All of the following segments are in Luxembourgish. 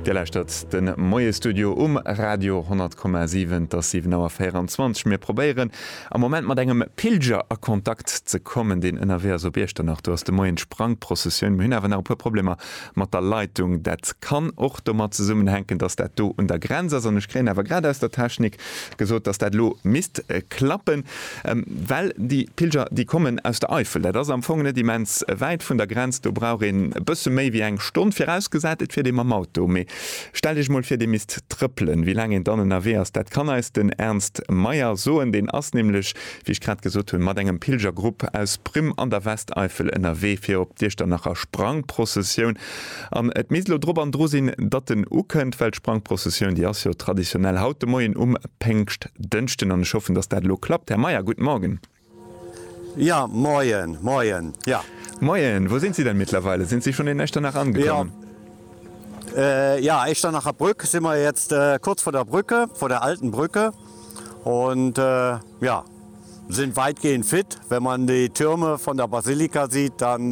Dir lauschtert de Moie-Studio um Radio 100,7. Et ass 7 Auer 24. Mir probéieren am Moment mat engem Pilger a Kontakt ze kommen, deen ënnerwee ass op Iechternach. Do ass de Moien d'Sprangprozessioun. Mir hunn awer nach e puer Problemer mat der Leitung. Dat kann och domat zesummenhänken, dass dat do un der Grenz ass. An ech kréien awer grad aus der Technik gesot, dass dat elo misst klappen. Well déi Pilger, déi kommen aus der Eifel. Dat ass am Fong net immens wäit vun der Grenz. Do brauch een e bësse méi wéi eng Stonn, virausgesat, et fiert ee mam Auto. Mee stellt Iech emol vir, Dir misst trëppelen. Wéi laang een dann ënnerwee ass, dat kann eis den Ernst Meyer soen. Deen ass nämlech, wéi ech grad gesot hunn, mat engem Pilgergrupp aus Primm an der Westeifel ënnerwee fir op d'Iechternacher Sprangprozessioun. An et misst elo drop an dru sinn, datt en ukënnt, well d'Sprangprocessioun, déi ass jo traditionell haut de Moien um Péngschtdënschden. An ech hoffen, datt dat elo klappt. Här Meyer, guten Morgen. Jo, moien, moien, jo. Moien, wou sinn si denn mittlerweile? Sinn si schonn in Echternach angekommen? Jo, jo, Echternacher Brück si mer jetzt, kurz vor der Brücke, vor der alten Brücke. On, jo, sinn weitgehend fit. Wenn man déi Türme von der Basilika sieht, dann,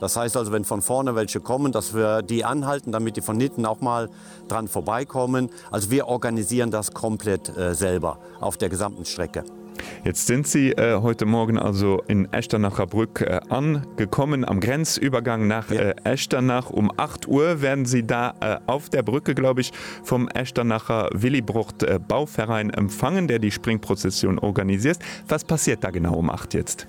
Das heißt also, wenn von vorne welche kommen, dass wir die anhalten, damit die von hinten auch mal dran vorbeikommen. Also wir organisieren das komplett selber auf der gesamten Strecke. Jetzt sind Sie heute Morgen also in Echternacher Brück angekommen, am Grenzübergang nach Echternach. Um acht Uhr werden Sie da auf der Brücke, glaube ich, vom Echternacher Willibrord-Bauverein empfangen, der die Springprozession organisiert. Was passiert da genau um acht jetzt?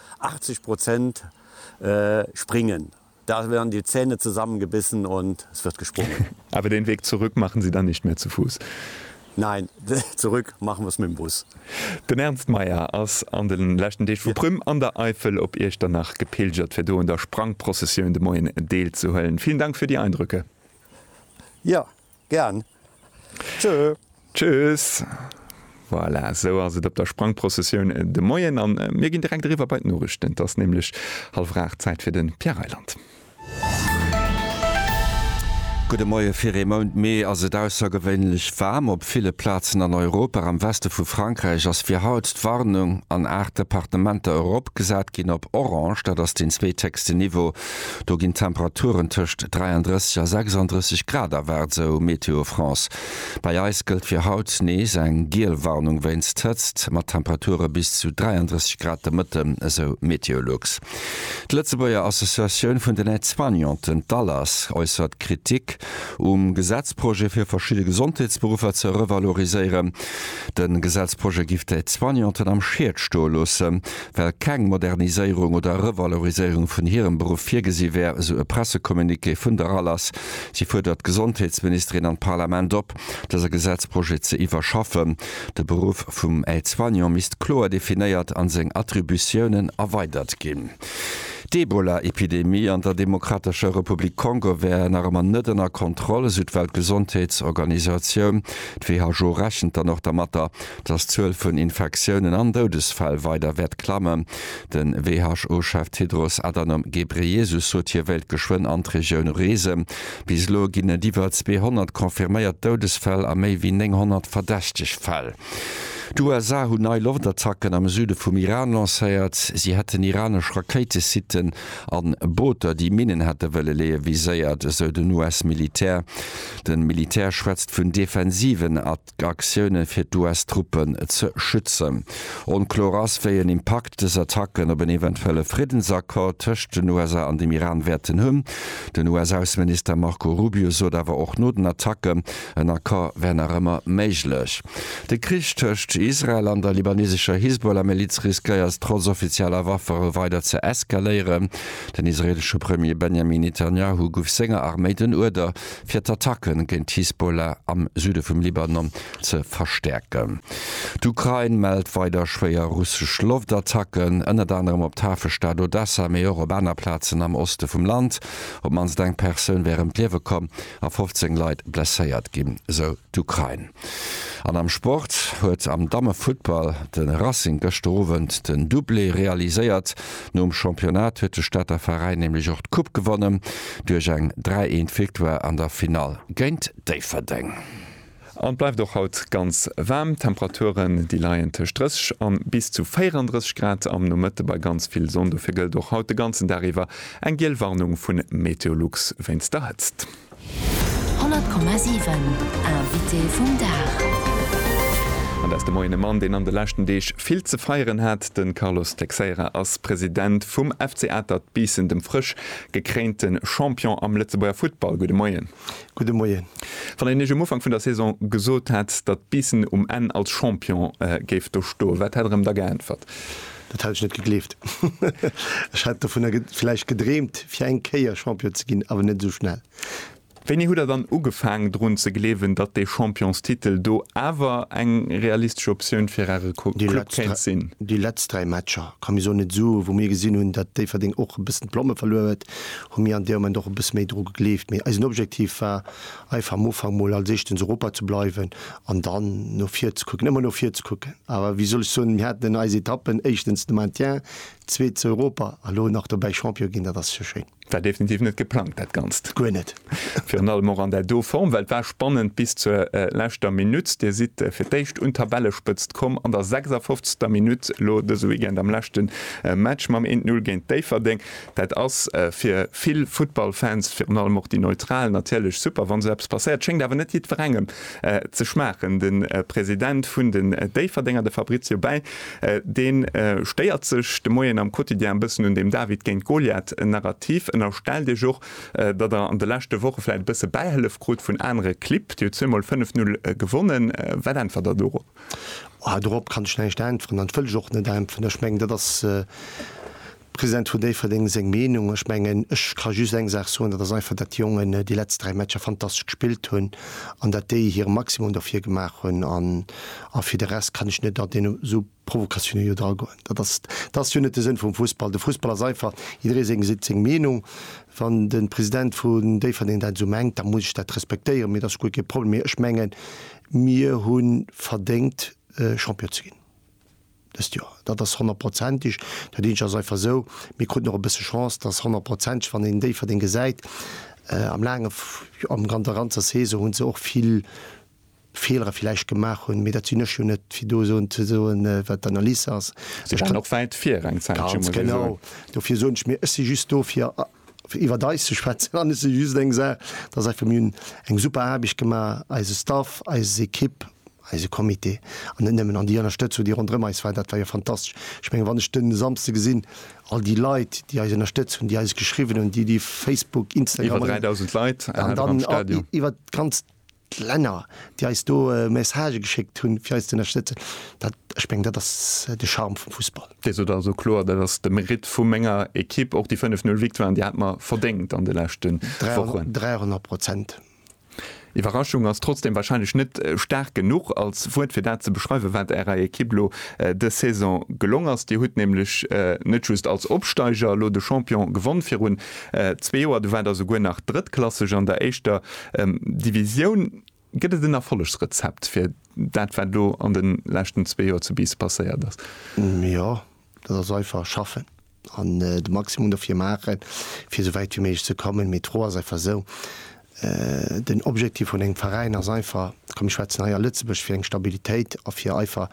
80 Prozent springen. Da werden die Zähne zusammengebissen und es wird gesprungen. Aber den Weg zurück machen Sie dann nicht mehr zu Fuß? Nein, zurück machen wir es mit dem Bus. Den Ernst Mayr ass an de leschten Deeg vu Prüm an der Eifel op Iechternach gepilgert, fir do un der Sprangprozessioun de Moien deelzehuelen. Villen Dank fir déi Eindröcke. Jo, Gern. Tschö. Tschüss. Voilà, esou ass et op der Sprangprozessioun de Moien. An mir ginn direkt eriwwer bei d'Noriichten. Et ass nämlech hallwer aacht, Zäit fir de Pierre Reyland. Gudde Moie. Fir ee Mount Mee ass et aussergewéinlech waarm op ville Plazen an Europa. Am Weste vu Frankräich ass fir haut d'Warnung an aacht Departementer eropgesat ginn op orange, dat ass den zweethéchsten Niveau. Do ginn d'Temperaturen tëscht 33 a 36 Grad erwaart, esou Météo France. Bei eis gëllt fir haut nees eng giel Warnung wéinst Hëtzt, mat Temperature bis zu 33 Grad de Mëtte, esou Meteolux. D'Lëtzebuerger Associatioun vun den Aide-soignanten, d'ALAS, äussert Kritik um Gesetzprojet, fir verschidde Gesondheetsberuffer ze revaloriséieren. De Gesetzprojet giff d'Aide-soignanten am Schied stoe loossen. Well keng Moderniséierung oder Revaloriséierung vun hirem Beruff virgesi wär, esou e Pressecommuniqué vun der RALAS. Si fuerdert d'Gesondheetsministerin an d'Parlament op, dëse Gesetzprojet ze iwwerschaffen. De Beruff vum Aide-soignant misst kloer definéiert a seng Attributiounen erweidert ginn. D'Ebola-Epidemie an der Demokratescher Republik Kongo wär nach ëmmer net ënner Kontroll, esou d'Weltgesondheetsorganisatioun. D'WHO rechent dann och dermatter, dass d'Zuel vun Infektiounen an Doudesfäll weider wäert klammen. Den WHO-Chef Tedros Adhanom Ghebreyesus sot hie wéilt geschwënn an d'Regioun reesen. Bis elo ginn et iwwer 200 confirméiert Doudesfäll a méi wéi 900 verdächteg Fäll. D'USA hunn nei Loftattacken am Süde vum Iran lancéiert. Si hätten iranesch Rakéitesitten a Booter, déi Minnen hätte wëlle leeë viséiert, esou den US-Militär. De Militär schwätzt vun defensiven Attacken. Aktioune fir d'US-Truppen ze schützen. Onkloer ass, wéi en Impakt dës Attacken op en eventuelle Friddensaccord tëscht den USA an dem Iran wäerten hunn. Den US-Ausseminister Marco Rubio sot awer och no den Attacken, en Accord wär nach ëmmer méiglech. De Krich tëscht Israel an der libanesescher Hisbollah-Miliz riskéiert trotz offizieller Waffere weider ze eskaléieren. Den israeelesche Premier Benjamin Netanjahu guff senger Arméi den Uerder, fir d'Attacke géint d'Hisbollah am Süde vum Libanon ze verstäerken. D'Ukrain mellt weider schwéier russesch Loftattacken, ënnert anerem op d'Hafestad Odessa, mee och op aner Plazen am Oste vum Land. Op d'mannst eng Persoun wär ëm d'Liewe komm a 15 Leit blesséiert ginn, sou d'Ukrain. An am Sport huet am Dammefuttball de Racing gëschter Owend den Doublé realiséiert. Nom Championnat huet de Stater Veräin nämlech och d'Coupe gewonnen, duerch eng 3 Eent Victoire an der Finall géint Déifferdeng. An et bleift och haut ganz waarm. D'Temperaturen, déi leien tëscht 30 a bis zu 34 Grad am Nomëtte bei ganz vill Sonn. Dofir gëllt och haut de ganzen Dag iwwer eng giel Warnung vu Meteolux wéinst der Hëtzt. 100,7 Invité vum Dag. An dat ass de Moien e Mann, deen an de leschten Deeg vill ze feieren hat. De Carlos Teixeira ass President vum FC Atert Biissen, dem frësch gekréinte Champion am Lëtzebuerger Futtball. Gudde Moien. Gudde Moien. Wann een Iech um Ufank vun der Saison gesot hätt, datt Biissen um Enn als Champion géif do stoen, wat hätt Der em da geäntwert? Dat hat ech net gegleeft. Ech hat dovunner vläicht gedreemt, fir eng Kéier Champion ze ginn, awer net esou schnell. Wéini hutt Der dann ugefaang, drun ze gleewen, datt dee Championstitel do awer eng realistesch Optioun fir Äre Club kéint sinn? Déi letzt dräi Matcher, ka mir soen, net esou, wou mir gesinn hunn, datt Déifferdeng och e bëssen d'Plomme verluer huet, hu mir an deem Moment och e bësse méi dru gegleeft. Mee eisen Objektiv war, einfach am Ufank mol als Éischten zu Europa ze bleiwen an dann no vir ze kucken, ëmmer no vir ze kucken. Awer wéi soll ech soen, mir haten an eis Etappen éischtens de Maintien, zweet zu Europa a lo nach dobäi Champion ginn, dat ass jo schéin. War definitiv net geplangt dat Ganzt. Guer net. Virun allem och an där do Form, well et war spannend bis zur leschter Minutt. Dir sidd fir d'éischt un d'Tabellespëtzt komm an der 56. Minutt, lo dëse Weekend am leschte Match mam 1, 0 géint Déifferdeng. Dat ass fir vill Futtballfans, virun allem och déi Neutral, natierlech super, wann esou eppes passéiert. Schéngt awer net jiddwerengem ze schmaachen. De President vun den Déifferdenger, de Fabrizio Bei, dee stéiert sech de Moien am Quotidien e bëssen un deem David-géint-Goliath-Narrativ, ënnerstellt Iech och, datt Der an de leschte Woche vläicht e bësse Bäihëllef krut vun anere Clibb, déi jo zweemol 5, 0 gewonnen. Wat äntwert Der dorop? Dorop kann ech näischt äntweren an et wëll ech och net äntweren. Ech mengen, dat ass. President vun Déifferdeng, seng Meenung. Ech mengen, ech ka just eng Saach soen, dat ass einfach, datt déi Jongen déi letzt dräi Matcher fantastesch gespillt hunn an datt déi hire Maximum dofir gemaach hunn. A fir de Rest kann ech net an deen esou Provokatiounen jo dragoen. Dat ass, dat ass jo net de Sënn vum Fussball. De Fussball ass einfach, jidderee seng seet seng Meenung. Wann de President vun Déifferdeng dat esou mengt, da muss ech dat respektéieren. Mee dat ass guer kee Problem. Mee ech mengen, mir hu verdéngt, Champion ze ginn. Dëst Joer, dat ass honnertprozenteg, dat eenzeg ass einfach esou, mir kruten och e bësse Chance, dass honnertprozenteg, wann een Déifferdeng gesäit am laange, jo, an der ganzer Saison hu se och vill Feelere villäicht gemaach hunn, mee dat sinn ech jo net fir do soen, ze soen, wat d'Analyse ass. Si waren och wäit vir eng Zäitche, muss ee soen. Ganz genau, dofir soen ech, mee ech si just do fir. fir iwwert eis ze schwätzen, an ech seet just eng Saach, dass einfach mir hunn eng super Aarbecht gemaach, eise Staff, eis Ekipp, eise Comité an net nëmmen, an déi Ënnerstëtzung, déi ronderëm eis war, dat war jo fantastesch. Ech mengen, wann ech de Samsde gesinn, all déi Leit, déi eis ënnerstëtzt hunn, déi eis geschriwwen hunn, déi, déi Facebook, Instagram, an dann iwwert d'ganzt. D'Länner, déi eis do Messagë geschéckt hunn, fir eis ze ënnerstëtzen, dat, ech mengen, dat ass de Charme vum Fussball. Dir sot also kloer, dat ass de Meritt vu menger Ekipp. Och déi 5, 0 Victoiren, déi hate mer verdéngt an de leschte Wochen. Dräihonnert Prozent. Iwwerraschung ass trotzdeem warscheinlech net staark genuch als Wuert, fir dat ze beschreiwen, wat Ärer Ekipp elo dës Saison gelong ass. Dir hutt nämlech net just als Opsteiger elo de Champion gewonn, virun Zwee Joer, du war der souguer nach drëttklasseg an der éischter Divisioun. Gëtt et en Erfollegsrezept fir dat, wat elo an de leschten zwee Joer zu Biissen passéiert ass? Jo, dat ass einfach, schaffen an de Maximum dofir maachen, fir esou wäit wéi méiglech ze kommen. Mee d'Fro ass einfach esou, Den Objektiv vun engem Veräin ass einfach, komm mir schwätzen hei a Lëtzebuerg, fir eng Stabilitéit a fir einfach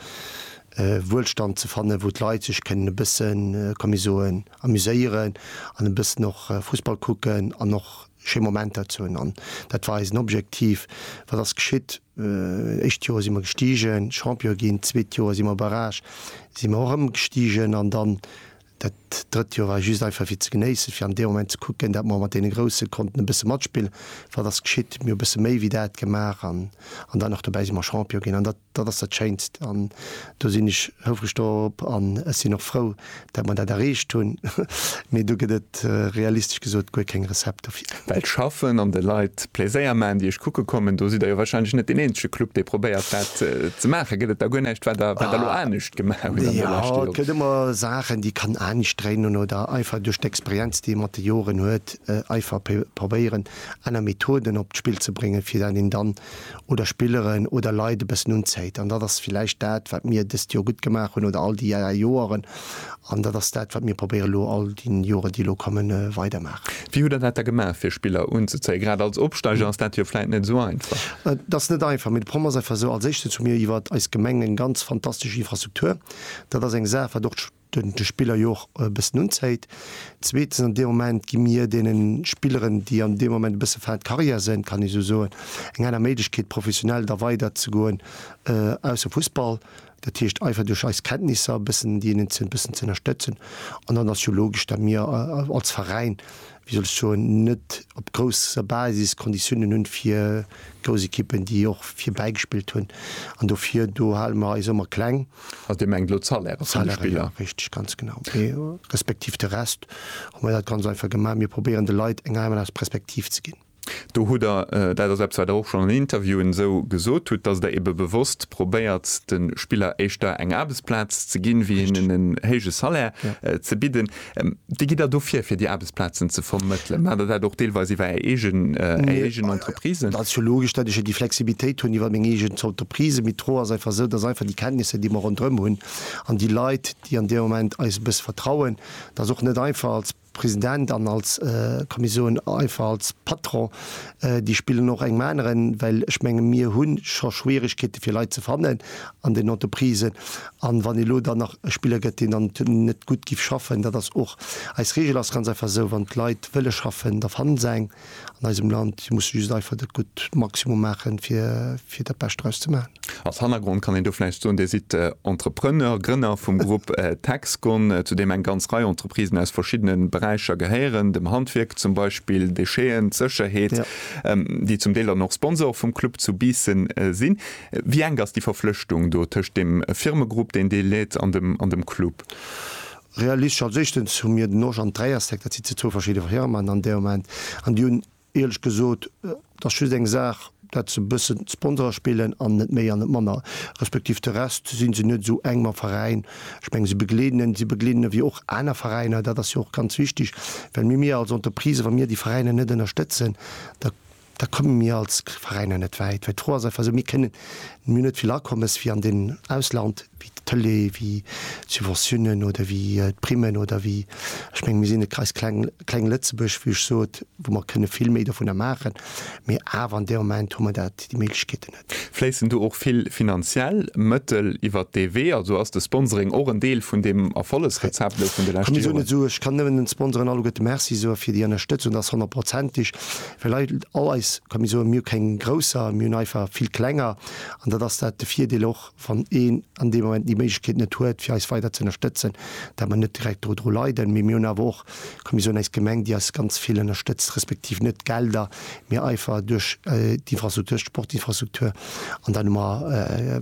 Wuelstand ze fannen, wou d'Leit sech kënnen e bëssen, komm mir soen, amuséieren an e bëssen och Fussball kucken an och schéi Momenter ze hunn. An dat war eisen Objektiv. Wat ass geschitt? Éischt Joer si mer gestigen, Champion ginn. Zweet Joer si mer barrage, si mer och erëm gestigen an dann Dat drëtt Joer war just einfach fir ze genéissen, fir an deem Moment ze kucken, dat mer mat deene Grousse konnten e bësse matspillen. Wat ass geschitt? Mir hu bësse méi wéi dat gemaach an dann och dobäi si mer Champion ginn an dat, dat ass dat Schéinst an do sinn ech houfreg dorop an ech sinn och frou, dat mer dat erreecht hunn. Mee do gëtt et realistesch gesot guer keng Recept dofir. Well d'Schaffen an de Leit Pléséier maachen, déi Iech kucke kommen, do sidd Der jo wahrscheinlech net deen eenzege Club, dee probéiert dat ze maachen. Gëtt et da guer näischt, wat Der elo anescht gemaach hunn an deene leschte Joren. Jo, et gëtt ëmmer Saachen, déi kann anstrengen oder einfach duerch d'Experienz, déi ee mat de Joren huet, einfach probéieren, aner Methoden op d'Spill ze bréngen, fir dat een dann oder Spilleren oder Leit e bëssen unzéit. An dat ass vläicht dat, wat mir dëst Joer gutt gemaach hunn oder all déi Joren An dat ass dat, wat mir probéieren elo all déi Joren, déi elo kommen, weidermaachen. Wéi hutt Der dat da gemaach, fir Spiller unzezéien? Grad als Opsteiger ass dat jo vläit net esou einfach. Et ass net einfach, mee de Problem ass einfach esou, Als Éischtens hu mir iwwer eis Gemeng eng ganz fantastesch Infrastruktur. Dat ass eng Saach, wat och de Spiller jo och e bëssen unzéit. Zweetens, an deem Moment gi mir deene Spilleren, déi an deem Moment e bësse fin de carrière sinn, kann ee sou soen, eng aner Méiglechkeet, professionell da weiderzegoen, ausser Fussball. Dat heescht einfach duerch eis Kenntnisser e bëssen déi eenen e bëssen ze ënnerstëtzen. An dann ass jo logesch, datt mir als Veräin, wéi soll ech soen, net op grousser Basis Konditiounen hunn, fir grouss Ekippen, déi och fir bäigespillt hunn. An dofir, do hale mer eis ëmmer kleng. Also Dir mengt elo d'Salairë vun de Spiller? D'Salairë, jo, richteg, ganz genau. Respektiv de Rest hu mer dat ganz einfach gemaach, mir probéieren de Leit eng Heimat aus Perspektiv ze ginn. Do hutt Der, dat ass eppes, wat Der och schonn an Interviewen esou gesot hutt, dass Der ebe bewosst probéiert, de Spiller éischter eng Aarbechtsplaz ze ginn, wéi hinnen en héije Salaire ze bidden. Wéi gitt Der do vir, fir déi Aarbechtsplazen ze vermëttelen? Maacht Der dat och deelweis iwwer Är eegen, Är eegen Entreprisen? Dat ass jo logesch, datt ech jo déi Flexibilitéit hunn iwwer meng eegen Entreprise. Mee d'Fro ass einfach esou, dass einfach déi Kenntnisser, déi mer ronderëm hunn, an déi Leit, déi an deem Moment eis e bësse vertrauen, dass och net einfach als, President an als komme soe einfach als Patron, déi spillen och engem aneren, well ech menge mir hu scho Schwierigkeete fir Leit ze fannen an den Entreprisen an wann elo dann nach e Spiller gëtt deen dann net gutt giff schaffen, dat ass och eis Regel ass ganz einfach esou, wann d'Leit wëlle schaffen da fanne se eng. an eisem Land. Si musse just einfach dat gutt Maximum maachen, fir, fir dat Bescht draus ze maachen. Als Hannergrond kann een do vläicht soen, Dir sidd Entrepreneur, Grënner vum Grupp Texgon, zu deem eng ganz Rei Entreprisen aus verschiddene Beräicher gehéieren, dem Handwierk zum Beispill, Décheten, Sécherheet, déi zum Deel dann och Sponsor vum Club zu Biissen sinn. Wéi enk ass déi Verflechtung do tëscht dem Firmegrupp, deen Dir leet, an dem, an dem Club? Realistesch, als éischtens hu mir den Osch an d'Dräierstéck, dat si zwou verschidde Firmen an dee Moment, an déi hunn ierlech gesot, dat ass just eng Saach, dat se e bëssen Sponsore spillen an net méi an net manner, respektiv de Rest si se net esou enk mam Veräin. Ech mengen, si begleeden en, si begleeden en ewéi och aner Veräiner, dat ass jo och ganz wichtig, well mir, mir als Entreprise, wa mir déi Veräiner net ënnerstëtzen, da Da komme mir als Veräiner net wäit, well d'Fro ass einfach esou, mir kënnen, mir hunn net vill Akommes wéi an dem Ausland, wéi d'Tëlee, wéi d'Subventionen oder wéi d'Primen oder wéi, ech mengen, mir sinn e ganz kleng, kleng Lëtzebuerg, wéi ech sot, wou mer kënne vill méi dovunner maachen, mee awer an deem Moment hu mer dat, déi Méiglechkeeten net. Fléissen do och vill finanziell Mëttel iwwert dee Wee? Also ass de Sponsoring och en Deel vun deem Erfollegsrezept elo vun de leschte Joren? Ech kann nëmmen den Sponsoren alleguerte Merci soe fir déi Ënnerstëtzung. Dat ass honnertprozentig, well eidel all eis, kann mir soen, mir hu keng grousser, mir hunn einfach vill klenger. An dat ass dat de Virdeel och. wann een an deem Moment déi Méiglechkeet net huet, fir eis weider ze ënnerstëtzen, dat mer net direkt dodru leiden. Mee mir hunn awer och, kann mir soen, eis Gemeng, déi eis ganz vill ënnerstëtzt, respektiv net d'Gelder, mee einfach duerch d'Infrastruktur, duerch d'Sportinfrastruktur. An dann hu mer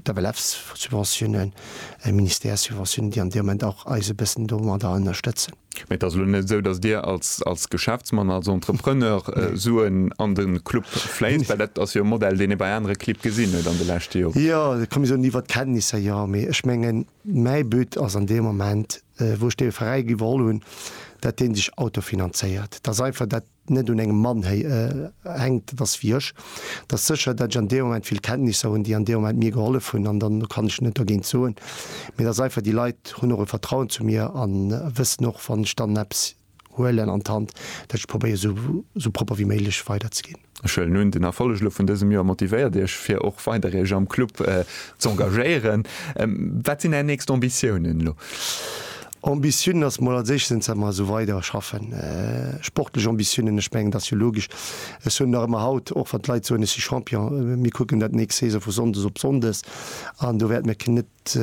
d'FLF-Subventiounen, Ministère-Subventiounen, déi an deem Moment och eis e bëssen domadder ënnerstëtzen. Mä et ass elo net esou, datt Dir als Geschäftsmann, als Entrepreneur Suen an de Club fléisst, well dat ass jo e Modell, deen ee bei anere Clibb gesinn huet an de leschte Joren. Jo, et kann ee soen, iwwert d'Kenntnisser, jo. Mee ech mengen, mäi But ass an deem Moment, wou ech dee Veräi iwwerholl hunn, datt dee sech autofinanzéiert. Datt einfach dat net un engem Mann hänkt, et ass fir iech, et ass sécher, datt ech an deem Moment vill Kenntnisser hunn, déi an deem Moment mir gehollef hunn an dann kann ech net dergéint soen. Mee et ass einfach, déi Leit hunn och e Vertrauen zu mir a wëssen och, wann ech dann eppes huelen an d'Hand, datt ech probéiere sou propper wéi méiglech weiderzeginn. Ech huelen un, den Erfolleg elo vun dësem Joer motivéiert iech fir och weider iech am Club z'engagéieren. Wat sinn är nächst Ambitiounen elo? Ambitiounen ass mol als éischt sinn, dass mer esou weider schaffen. Sportlech Ambitiounen, ech mengen, et ass jo logesch, ech soen nach ëmmer haut, och wann d'Leit soen, ech si Champion, mir kucken dat d'nächst Saison vu sonndes op sonndes an do wäerte mir keen net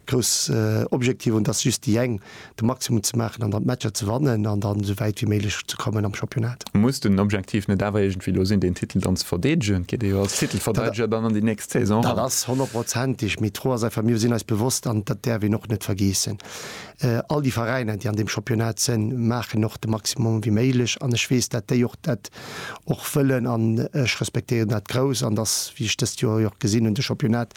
grouss Objektiver hunn, et ass just déi eng, de Maximum ze maachen an dann d'Matcher ze wannen an dann esou wäit wéi méiglech ze kommen am Championnat. Muss den Objektiv net awer iergendwéi do sinn, deen Titel dann ze verdeedegen? Et geet ee jo als Titelverdeedeger dann an déi nächst Saison eran. Dat ass honnertprozentig, mee d'Fro ass einfach, mir sinn eis bewosst, an dat däerf een och net vergeessen, all déi Veräiner, déi an deem Championnat sënn, maachen och de Maximum wéi méiglech. An ech weess, dat déi och dat och wëllen an ech respektéieren dat grouss. An dass, wéi ech dëst Joer jo och gesinn hunn, de Championnat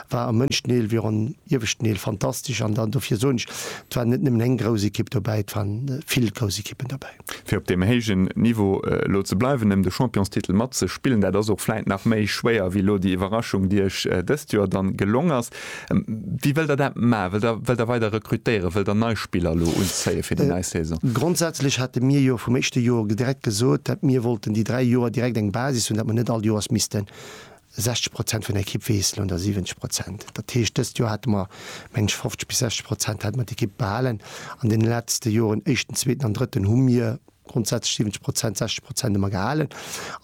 war am ënneschten Deel wéi och am ieweschten Deel fantastesch. An dann dofir soen ech, et war net nëmmen eng grouss Ekipp dobäi, et waren vill grouss Ekippen dobäi. Fir op deem héijen Niveau elo ze bleiwen, ëm de Championstitel matzespillen, dat ass och vläit nach méi schwéier wéi elo déi Iwwerraschung, déi iech dëst Joer dann gelong ass. Wéi wëllt der dat maachen? Wëllt der, wëllt der weider rekrutéieren? Wëllt der nei Spiller elo unzéien fir déi nei Saison? Grondsätzlech hate mir jo vum éischte Joer direkt gesot, dat mir wollten déi dräi Joer direkt eng Basis hunn, dat mer net all Joers missten 60 Prozent vun der Ekipp weess lo der 70 Prozent. Dat heescht, dëst Joer hate mer, mengen ech, 50 bis 60 Prozent hate mer d'Ekipp behalen. An deene letzte Joren, éischten, zweeten an drëtten, hu mir grondsätzlech 70 Prozent, 60 Prozent hu mer gehalen.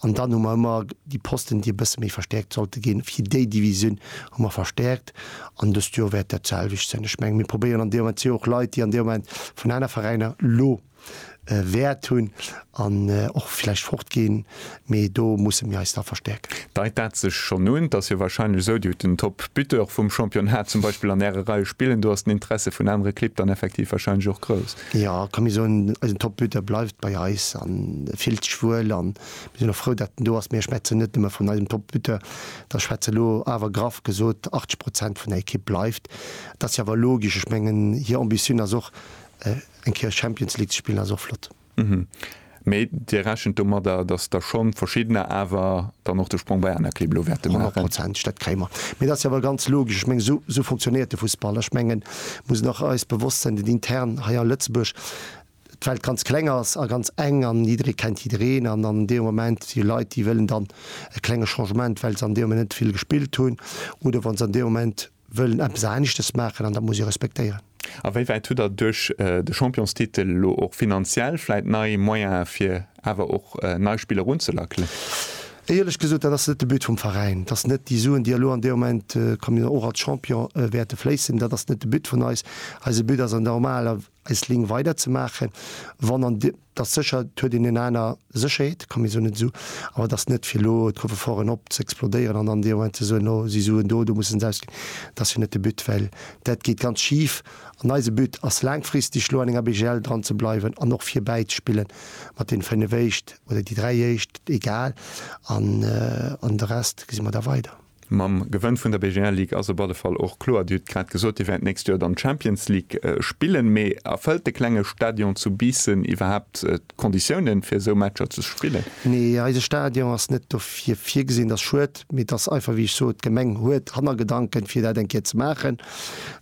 An dann hu mer ëmmer déi Posten, déi e bësse méi verstäerkt sollte ginn, fir déi Divisioun hu mer verstäerkt. An dëst Joer wäert dat d'selwecht sinn. Ech mengen, mir probéieren an deem Moment si och Leit, déi an deem Moment vun aner Veräiner lo. Wäert hunn an och vläicht fortginn, mee do musse mir eis da verstäerken. Deit dat sech schonn un? T'ass jo wahrscheinlech esou, Dir hutt den Top Buteur vum Championnat zum Beispill an Äre Reie spillen, do ass den Interesse vun anere Clibb dann effektiv wahrscheinlech och grouss. Jo, ka mir soen, eisen Top Buteur bleift bei eis a fillt sech wuel an mir sinn och frou, dat en do ass. Mee ech schwätzen net nëmme vun eisem Top Buteur, da schwätze elo awer graff gesot 80 Prozent vun der Ekipp bleift. T'ass jo awer logesch, ech mengen hir Ambitioun ass och, eng Kéier Champions League ze spillen ass och flott. Mee Dir rechent domadder, datt der schonn verschiddener awer dann och de Sprong bei aner Clibb elo wäerte maachen? Honnertprozentteg, dat kréie mer. Mee dat ass jo awer ganz logesch. Ech mengen, esou fonctionnéiert de Fussball. Ech mengen, et muss een och eis bewosst sinn, den intern hei a Lëtzebuerg, d'Welt ganz kleng ass a ganz eng an jidderee kennt jiddereen an an deem Moment si Leit, déi wëllen dann e klenge Changement, well se an deem Moment net vill gespillt hunn oder wa se an deem Moment, wëllen eppes aneschtes maachen an dat muss ee respektéieren. A wéi wäit hutt Der duerch de Championstitel elo och finanziell vläit nei Moyene fir awer och nei Spiller runzelackelen? Éierlech gesot, dat ass net de But vum Veräin. Et ass net déi Suen, déi elo an deem Moment, wa mir och als Champion wäerte fléissen, dat ass net de But vun eis. Eise But ass an der normaler. eis Léng weider ze maachen, wann an de, et ass sécher, et huet een eng aner Sécherheet, et ka mir soen, net esou, awer et ass net fir elo d'Coffre-forten op ze explodéieren an dann dee Moment ze soen, no, si Suen do, do musse se ausginn. Dat ass jo net de But, well dat geet ganz schif an eise But ass laangfristeg elo an enger BGL dran ze bleiwen an och virbäi ze spille mat deene fénnef éischt oder déi dräi éischt, egal, an de Rest gesi mer da weider. Mam Gewënn vun der BGL Ligue ass op alle Fall och kloer, Dir hutt grad gesot, Dir wäert d'nächst Joer dann d'Champions League spillen. Mee erfëllt de klenge Stadion zu Biissen iwwerhaapt d'Konditiounen, fir esou Matcher ze spillen? Nee, eise Stadion ass net dofir virgesinn. Dat ass schued, mee et ass einfach wéi ech sot, d'Gemeng huet Hannergedanken, fir dat eng Kéier ze maachen.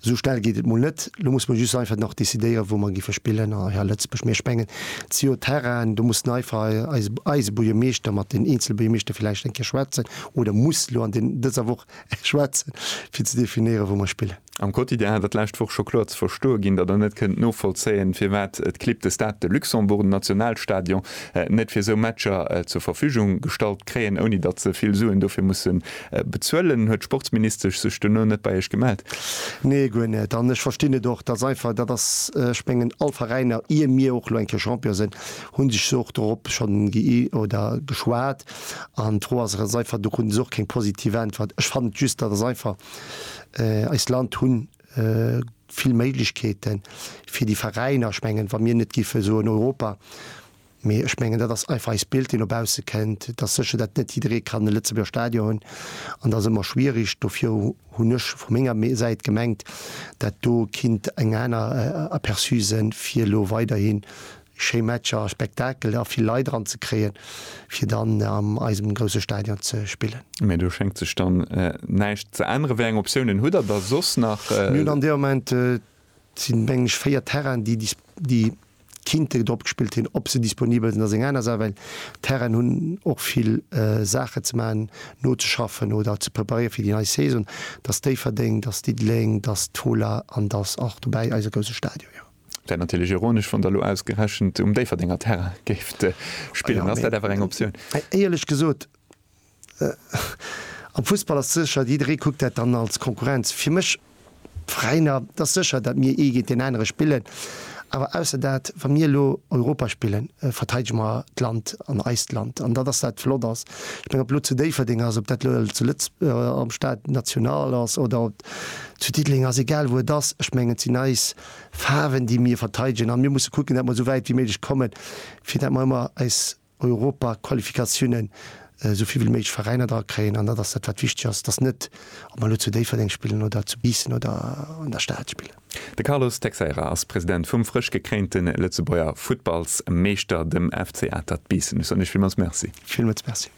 Esou schnell geet et mol net. Elo musse mer just einfach nach decidéieren, wou mer géife spillen a hei a Lëtzebuerg. Mee ech mengen, zio Terrainen, do muss den einfach eise, eise Buergermeeschter mat den eenzele Buergermeeschter villäicht eng Kéier schwätzen oder muss elo an de, dëser Woch schwätzen, fir ze definéieren, wou mer spillen. Am Quotidien hat der d'lescht Woch scho kloer ze verstoe ginn, datt Der net kënnt novollzéien, firwat d'Clib de Stade de Luxembourg, den Nationalstadion, net fir esou Matcher zur Verfügung gestallt kréien, ouni datt se vill Suen dofir mussen Bezuelen? Huet d'Sportsministesch sech duerno net bei Iech gemellt? Nee, guer net. An ech verstinn et och. Dat ass einfach, dat ass, ech mengen, all Veräiner, ier mir och elo eng Kéier Champion sinn, hu sech se och dorop schonn gi oder geschwat. An d'Fro ass eres einfach, do kruten se och keng positiv Äntwert. Ech fannen just, dat ass einfach, eist Land hu vill Méiglechkeeten, fir déi Veräiner, ech mengen, wa mir net géife soen, Europa, Mee ech mengen, dat ass einfach eist Bild, dee no bausse kënnt, dass sécher dat net jidderee kann e Lëtzebuerger Stadion hunn. An dat ass ëmmer schwierig. Dofir hunn ech vu menger Säit gemengt, dat do kinnt eng aner Aperçu sinn, fir elo weiderhi schéi Matcher a Spektakel a vill Leit eran ze kréien, fir dann a eisem grousse Stadion ze spillen. Mee do schéngt sech dann näischt ze änneren. Wéi eng Optiounen hutt Der da soss nach? Mir hunn an deem Moment Et sinn, mengen ech, véier Terrainen, déi dis, déi kinnte drop gespillt hin, ob se disponibel sinn, ass eng aner Saach, well d'Terrainen hunn och vill Saachen ze maachen, nozeschaffen oder ze preparéieren fir déi nei Saison. Datt Déifferdeng, datt Diddeleng, datt d'Fola an datt och dobäi eise grouse Stadion, jo. Wär natierlech ironesch, wann Der elo ausgerechent um Déifferdenger Terrain géift spillen. Ass dat awer eng Optioun? Éierlech gesot, Am Fussball ass sécher, jidderee kuckt dat dann als Konkurrenz. Fir mech, d'Veräiner, et ass sécher, datt mir ee géint deen anere spillen, awer ausser dat, wa mir elo Europa spillen, verteidege mer d'Land an eist Land. An datt ass dat flott ass. Ech mengen, ob elo zu Déifferdeng ass, ob dat elo zu Lëtz-, am Stade national ass oder ob zu Diddeleng ass, egal wou et ass, ech mengen, et sinn eis Faarwen, déi mir verteidegen a mir musse kucken, datt mer esou wäit wéi méiglech kommen, fir datt mer ëmmer eis Europaqualifikatiounen, esou vill wéi méiglech Veräiner dra kréien, an dat ass dat wat wichteg ass, dass net, ob mer elo zu Déifferdeng spillen oder zu Biissen oder an der Stad spillen. De Carlos Texeira ass President vum frësch gekréinte Lëtzebuerger Futtballsmeeschter, dem FC Atert Biissen. Ech soen Iech villmools Merci. Villmools Merci.